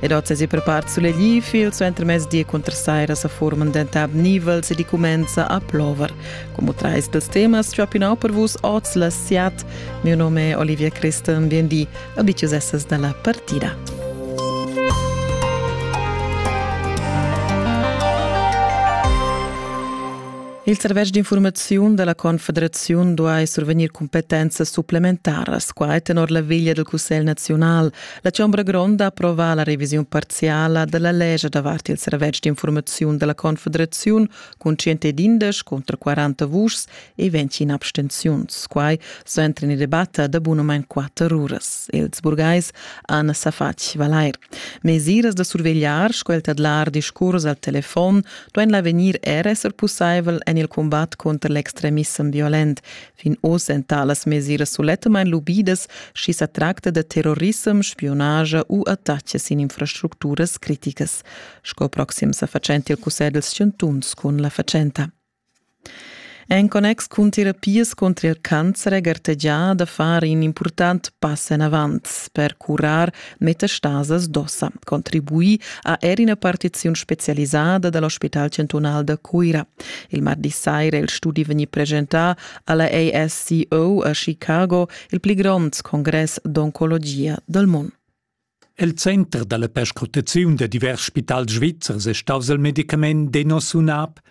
Ed oz es i prepart sulegl fil suenter mezdi cunter saira sa forman dentab nivels ed i cumenza a plover. Como trais dels temas ciò pinau per vus oz la siat. Mio nome è Olivia Christen, biendi, abitius essas dalla partida. Il servetsch d'informaziun della Confederaziun duai survegnir competenze supplementaras, quai tenor la veglia del Cussegl nazional, La Chombra Gronda approva la revisiun parziala della legge davart il servetsch d'informazione della Confederazione con 111 contro 40 vuschs e 20 in abstenziuns. Quai so entren in debatte da bunament 4 uras. Els burgais Anna Safach Valleir. Mesiras da survegliar, sco il tadlar discurs al telefon, doen l'avegnir er esser pussaivel en il combat contro l'extremissem violent, Fin oz èn talas mesiras sulettamain lubidas, sch'i sa tracta da terrorissem, spiunage u attacks sin infrastructuras criticas, sco proxim sa fatschentia cussegl dals chantuns cun la fatschenta. En connex cun terapias contro il cancer è gartegià da far in impurtant pass enavant per curar metastasas d'ossa, contribui a er ina partiziun specialisada dal Ospital chantunal da Cuira. Il mardi saira il studi vegni presentà alla ASCO a Chicago, il pli grond congress d'oncologia dal mondo. El center dalla perscrutaziun da divers spitals svizzers è staus il medicament Denosumab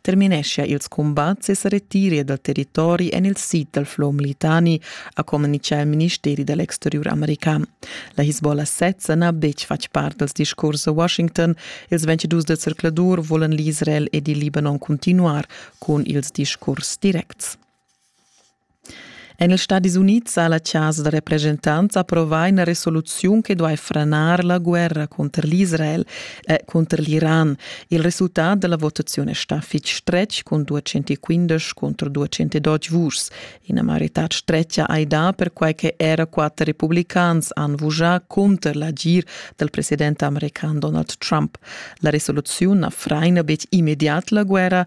termineschia ils cumbats e sa retiria dal territori en il sid dal flow militani, ha communitgà il ministeri da l'exteriur american. La Hisbollah sezza n'ha betg fatg part dals discurs a Washington. Ils 22 del circladur volan l'Israel ed il Libanon continuar cun ils discurs directs. En ils Stadis Unids ha la chasa da represchentants approvà ina resoluziun che duai franar la guerra cunter l'Israel e cunter l'Iran. Il resultat da la votaziun è stà fitg stretg cun 215 contro 212 vuschs. Ina maioritad stretga hai dà perquai che era quatter republicans han vuschà cunter l'agir dal president american Donald Trump. La resoluziun na fraina betg immediat la guerra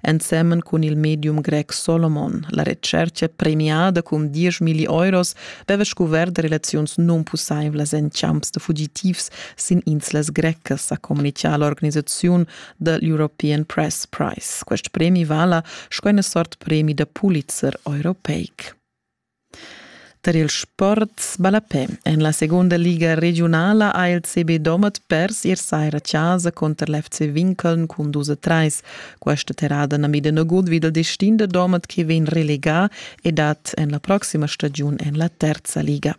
ensemen cun il medium grec Solomon. La retscherca, premiada cun 10 milli euros, veva scuvert relaziuns nunpussaivlas en champs da fugitivs sin inslas grecas, ha communichà l'organisaziun da l'European Press Prize. Quest premi vala sco ina sort premi da Pulitzer europeic. Tar il sport ballapè en la segunda liga regiunala ha il CB Domat pers ier saira chasa cunter l'FC Winkeln cun dus a trais. Questa terrada na mida nagut vid il destin da Domat che vegn relegà e dat en la proxima stagiun en la terza liga.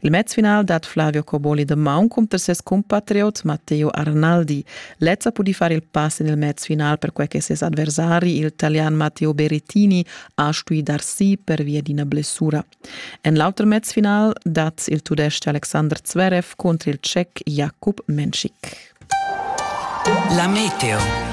Il mezfinal dat Flavio Coboli da maun cunter ses compatriot Matteo Arnaldi. Lezza pudi far il pass en il mezfinal perquai che ses adversari, il talian Matteo Berrettini, ha stuì dar si per via d'ina blessura. En l'auter mezfinal dat il Tudestg Alexander Zverev contro il Tschech Jakub Menschik. La meteo.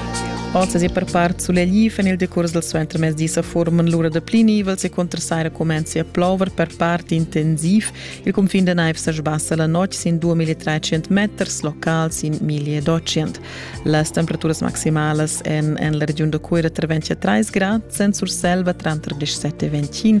Oz è per part sulegl en il decurs del suo entremezdi sa forman l'ura da pli nivels e contrasaira comenza a plover per part intensiv. Il confin de naiv se sbassa la notte sin 2300 meters locals in 1200. Las temperaturas maximalas en, en la regiun de Cuira tra 23 grad, Sent Surselva tra 17 e 21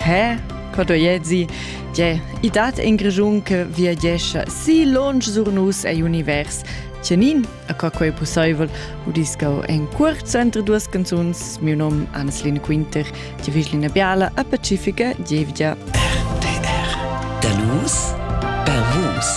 Pè, co doiezi, tge, i dat en Grischun che viagescha si lonsch sur nus ei univers. Tgenin, a co quei pusseivel, udis gau en curt sentre duas canzuns, miu nom Anneslin Quinter, die Vislina Biala, a Pacifica, Gievgia. RTR. Da nus, per vus.